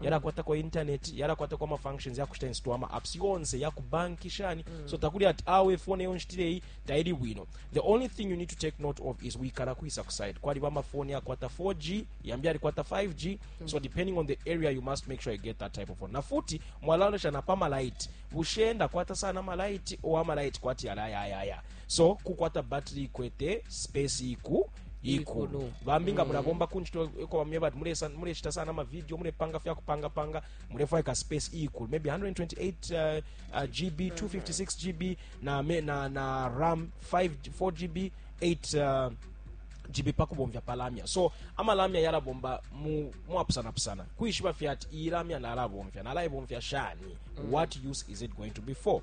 yalakwatako internet yalakwatako ama functions yakushita install ama apps yonse yakubanki shani mm. so takuli ati awe phone yo nshitireyi taili bwino the only thing you need to take note of is wikala kuisa kuside kwaliba amafoni yakwata 4g yambi alikwata 5g mm. so depending on the area you must make sure you get that type of phone na futi mwalaonesha na pamalaiti bushenda kwata sana malaiti o amalaiti kwati yalayayaya so kukwata battery kwete space iku ikulu bambi nga mulabomba ku ncito eko bamye bati mulesa- muleshita sana amavidiyo mulepanga fya kupangapanga mulefwaya ka space ikulu maybe 128 uh, uh, gb 256 gb na, me- na, na ram 5, 4 gb 8 uh, jibi pakubomvya pa lamya so ama lamya yalabomba mu- muapusanapusana kuishiba fye ati iyi lamya nalabomvya nalaibomvya shani what use is it going to be for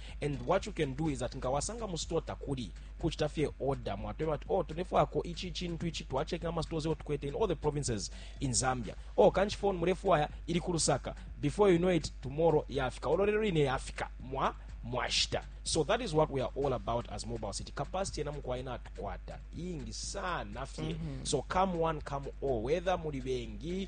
and what you can do is that nga wasanga mu store takuli kuchita fye order mwatweba ati oh tulefwako ichi chintu ichi twachecking ama stores yo tukwete in all the provinces in Zambia oh kanchi phone mulefwaya ili ku Lusaka before you know it tomorrow yafika ololero ine yafika mwa mwashita so that is what we are all about as mobile city capacity yena mukuwa ina atukwata ingi sana fye mm -hmm. so come one come all whether muli bengi